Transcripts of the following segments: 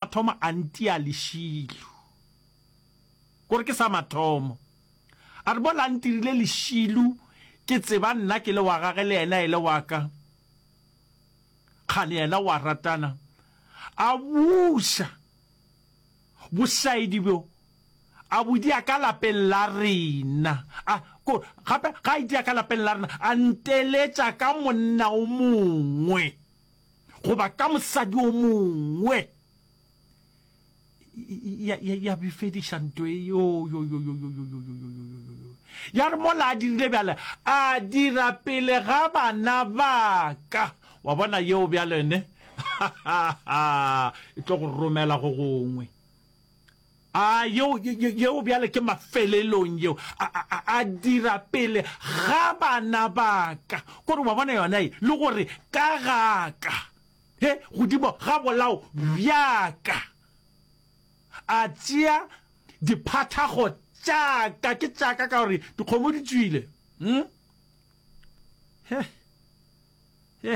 A thoma a ntia lešilu. Gore ke sa mathomo. A re mola a ntirile lešilu, ke tseba nna ke le wa gage le yena e le wa ka. Kgane yena o a ratana. A buša bošaedi bjo a bo dia ka lapeng la rena. A, ko, gape ga a e dia ka lapeng la rena, a nteletša ka monna o mongwe. goba ka mosadi o mongwe ya bifediša nto e ya re mola a dirile bjale a dira pele ga bana ba ka wa bona yeo bjalene e tlo go romela go gongwe A yeo, yeo bjale ke mafelelong, yeo a, a, a dira pele ga bana ba ka. Kore wa bona yona ye, le gore ka ga ka, he, godimo ga bolao bja ka, a tšea diphathago tša ka, ke tša ka, ka gore dikgomo di tšwile. Hm? He, he.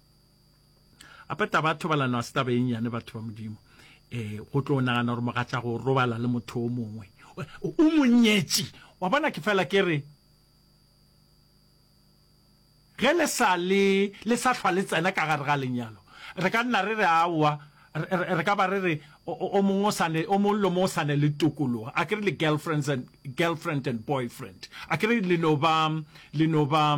ape taba ya thobalano a se taba eng yane batho ba modimo um go tlo nagana gore mogatša go robala le motho o mongwe o monyetši wa bona ke fela ke re ge le sa le le sa hlwa le tsena ka gare ga lenyalo re ka nna re re aowa re ka ba re re o mongwe o sane o mongwe le mongwe o sane le tokologa a ke re le girlfriends and girlfriend and boyfriend a ke re le no ba le no ba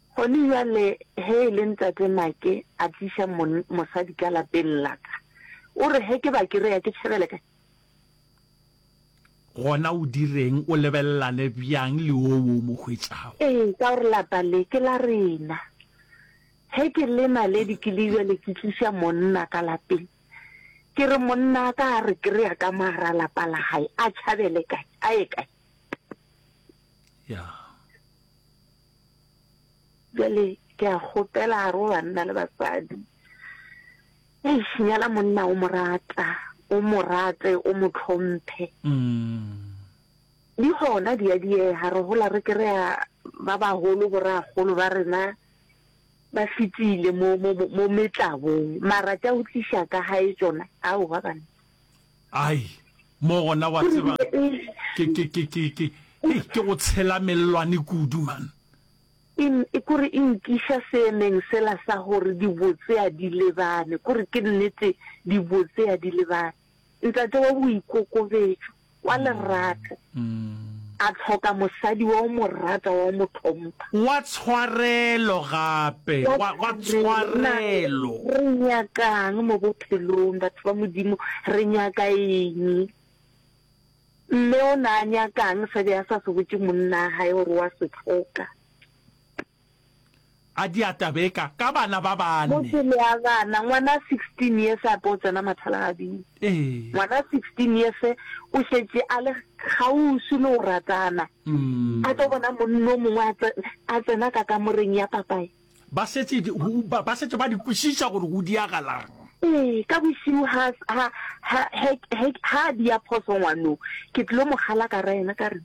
Gone bjale ge e le Ntate Make a tliša mon, mosadi ka lapeng la ka, o re ge ke ba krea ke tšhabele kae? Gona o direng, o lebelelane bjang le wo wo o mo hwetšago? Ee, ka gore lapa le ke la rena. Ge ke le naledi ke le bjale ke tliša monna ka lapeng, ke re monna wa ka a re krea ka mo gare ga lapa la gae, a tšhabele kae? A ye kae? Ya. Bjale ke a kgopela gare go banna le basadi, eish, nyala monna o mo rata, o mo rate, o mo tlhomphe. Di gona di a diega, re gola re kry-a ba bagolo, boragolo ba rena ba fetile mo metlabong, mara tša go tliša ka gae tšona, aowa banna. Ai, mo gona wa tseba ke ke ke ke ke hei ke go tshela mellwane kudu man. In, e kore e nkiša seemeng sela sa gore dibotse a di lebane, kore ke nnete dibotse a di lebane. Ntate wa boikokobetšo. wa lerato, a tlhoka mosadi wa o mo rata, wa o mo tlhompha. Wa tshwarelo gape, wa, wa tshwarelo. Re nyakang mo bophelong, batho ba Modimo? Re nyaka eng? Mme o ne a nyakang se be a sa se botše monna wa gage gore wa se tlhoka? a di a tabeka ka bana ba bane. Motse le a gana, ngwana 16 years a po tsena mathalagabing. Ngwana 16 years o šetše a le kgausu le o ratana. A tlo bona monno mongwe a tsena ka kamoreng ya papae. Ba šetše ba šetše ba di kwešiša gore go diagalang. Ee, ka bošiu ha ha ha ha ha dia phoso ngwano. Ke tlilo mogala ka ra yena ka re.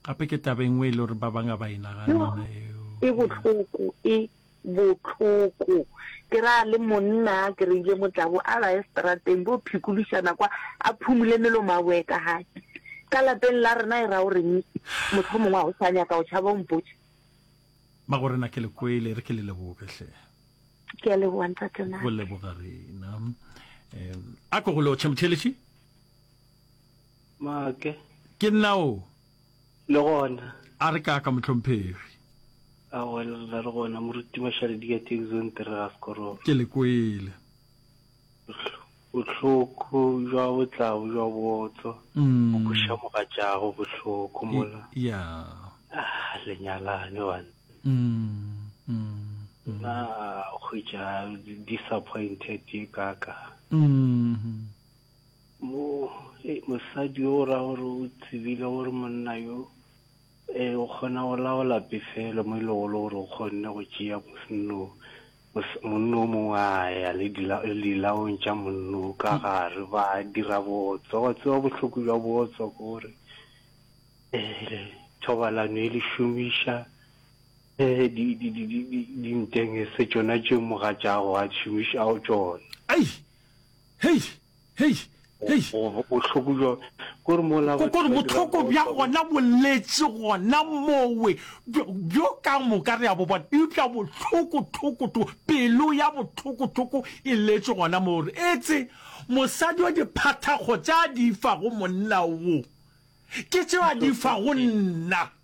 Gape ke taba e nngwe e le gore ba bang ga ba e naganne eo. E bohloko, e bohloko. Ke ra le monna a kry-ile motlabo, a ba ye strateng bo phikološana kwa, a phumule melomo a boe ka gae. Ka lapeng la rena e ra o reng? Mohlomongwe a o sa nyaka o tšhaba o mpotše. Mago rena ke le kwele, re ke le leboge hle. Ke a leboga ntate Naka. Go leboga rena. Um, a ko go lo, Chemtheletši? Maake. Ke nna o. Le gona. A re kaaka motlhomphegi. A wela re le gona moruti Mashale di ka take zone tere ga sekoroba. Ke le kwele. Bohloko jwa botlau jwa botso. Mm. Go sha mogatšago bohloko mola. Ya. Ah, le nyalane bana. Mm. Mm. Na go ja disappointed ye kaka. Mm. Mo, e, mosadi yo o ra gore o tsebile gore monna yo e, o kgona go laola pefelo mo e lego le gore o kgonne go tšea mosenno mos- monna o mongwe a ya le dila- le dilaong tša monna o ka gare ba dira botso wa tseba bohloko bja botso ke gore eh, thobalano e le šomiša eh, di- di- di- di- di- dinteng e se tšona tše mogatšago a šomišago tšona Ai, Hei! Hei! Hei! Bohloko bja kore mola ba Kore bohloko bja gona boletše gona mowe bjo ka moka re a bo bona. Eupša bohloko hloko hloko, pelo ya bohloko hloko e letše gona moo gore etse mosadi wa diphathakgo tša di fa go monna wo, ke tšeo a di fa go nna.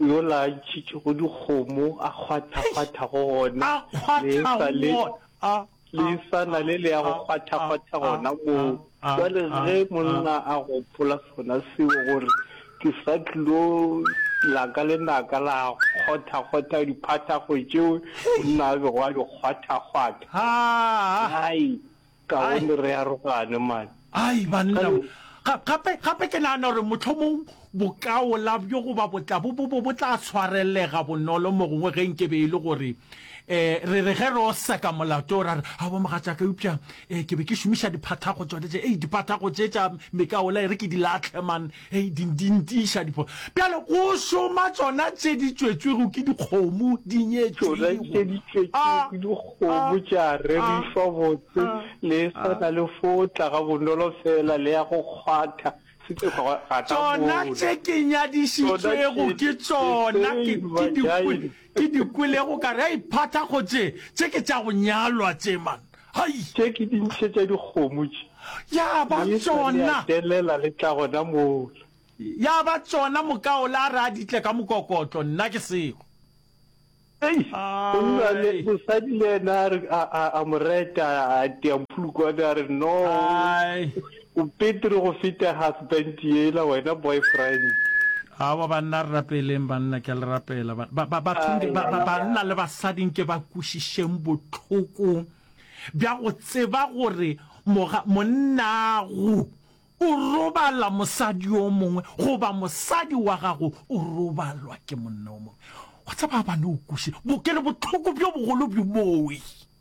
yola a ntšhitšego dikgomo a kgwathakgwatha go gona A kgwatha le go sa le- gona. A- le a- sa na le le ya go a- kgwathakgwatha a- gona a- moo a- jale a- ge a- monna a gopola sona seo gore ke sa tlilo laka le naka la kgwathakgwatha diphathago tšeo monna a bego a di kgwathakgwatha Haa. ai Kaone re arogane man. Ai banna we. Ga, gape, gape ke nagana gore mohlomong bokaola bjo goba botla bo, bo, bo, bo tla tshwarelega bonolo mogongwe ge nke be e le gore, e, re re ge re o seka molato o ra re, A bo mogatšaka, eupša, e, ke be ke šomiša diphathago tšona tše, ei, diphathago tše tša mekaola e re ke di lahle man. Hei, di, di ntiša dipho. Bjalo, go šoma tšona tše di tšwetšwego ke dikgomo, di nyetšwego. Tšona tše di tšwetšwego ke dikgomo, tša rerišwa botse, le swana le fo tla ga bonolo feela, le ya go kgwatha. Tšona tše ke nyadišitšwego ke tšona, ke, ke dikgwele. Ke di kwelego ka re a iphatha go tše tše ke tša go nyalwa tše man. Hai. Tše ke di ntshe tša dikgomo tše. Ya ba tsona. Di sa le a telela le tla gona mola. Ya ba tsona mokaola a re a di tle ka mokokotlo nna ke sego. Ei, go nna le mosadi le ena a re a a a moreta a tea mphulukwane a re no. Ai. O petri go feta husband yela wena boyfriend. Aowa banna re rapeleng banna ke a le rapela bathong ba banna le basadi nke ba kwešišeng bohloko bja go tseba gore monnago o robala mosadi yo mongwe goba mosadi wa gago o robalwa ke monna yo mongwe wa tseba a ba no kwešiša bo ke le bohloko bjo bogolo bjo booi.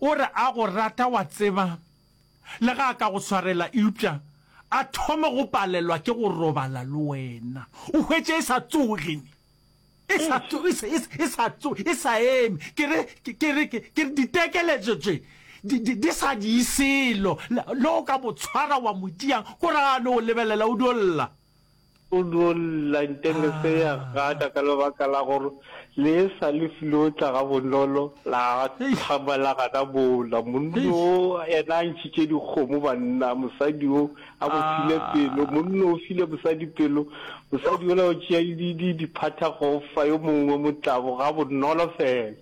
O re a go rata, wa tseba, le ge a ka go swarela eupša a thome go palelwa ke go robala le wena. O hwetše e sa tsoge, e sa tso, e sa, e sa tso, e sa eme. Ke re, ke re, ke re ditekeletšo tše di, di, di sa di selo, le, le o ka mo tshwara wa mo diang, ko ra a no go lebelela o dio lla. O no lla nteng se ya gata ka lebaka la gore le e sa le file o tla ga bonolo la thaba la gana bola. Monno o yena a ntšhitše dikgomo banna, mosadi o a mo file pelo. Monno o file mosadi pelo, mosadi yola o tšea di di diphatha go fa yo mongwe motlabo ga bonolo fela.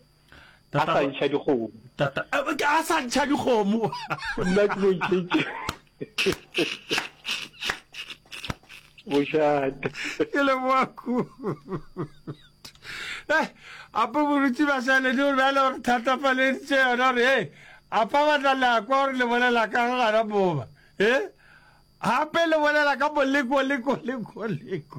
a sa ntšha dikgomo tata a sa ntšha dikgomo nna ke no ntšhetše bošate ke le boaku eh apa borutsi ba sale di re bjale gore thatafaleditše yona gore e apa batla le a kwa gore le bolela ka gana boba e gape le bolela ka boleko leko leko leko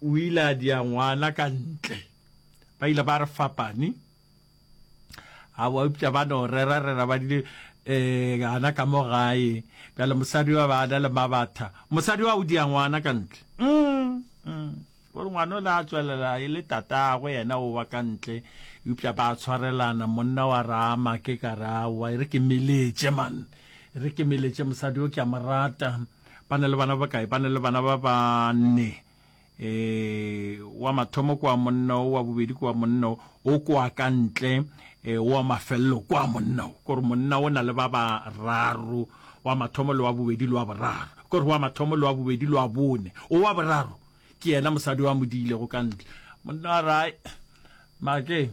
O ile a dia ngwana ka ntle. Ba ile ba re fapane. A wa upša ba no rera rera ba dile eh gana ka mo gae. Bjale mosadi wa ba na le mabatha. Mosadi wa o dia ngwana ka ntle. Mm, mm. Gore ngwana o le a tswelela e le tatagwe yena o wa ka ntle. Upša ba tshwarelana monna wa rama ke ka ra wa e re ke meletše man. E re ke meletše mosadi o ke a morata. Ba na le bana ba bakae? Ba na le bana ba banne. E, wa mathomo kwa monna o, wa bobedi kwa monna o, o kwa ka ntle, e, wa mafelelo kwa monna o. Kore monna o na le ba bararo, wa mathomo le wa bobedi le wa boraro. Kore wa mathomo le wa bobedi le wa bone. O wa boraro ke yena mosadi wa mo diilego ka ntle. Monna a re, Hai, Make,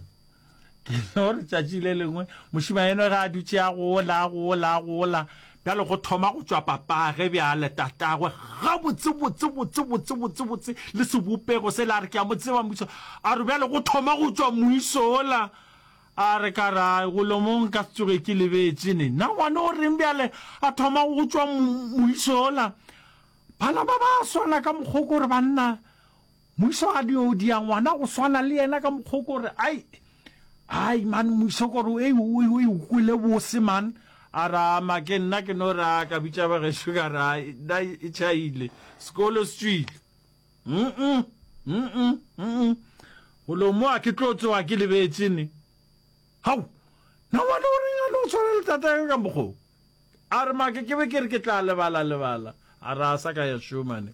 gore tšatši le lengwe mošima eno ga a dutše a gola a gola a gola bjale go thoma go tšwa papage bjale tatagwe gabotsebotsebotsebotsebotsebotse le sebopego se le a re ke a mo tseba moiso a re bjale go thoma go tšwa moiso ola a re ka ra golomong ka se tsoge ke lebetse ne na ngwane o reng bjale a thoma go tšwa moiso ola bana ba ba swana ka mokgoko gore banna Muiso a di odia ngwana go swana le yena ka mokgwa gore ai ai man muiso gore o e o kwele bose man a ra ma ke nna ke no ra ka bitša ba ge sugar ra da e chaile sekolo se tswile mm mm mm go lo mo a ke tlo tsoa ke lebetse ne hau na ngwana o reng a lo tshwana le tata yo ka mokgwa a re ma ke ke be ke re ke tla lebala lebala a ra sa ka ya shumane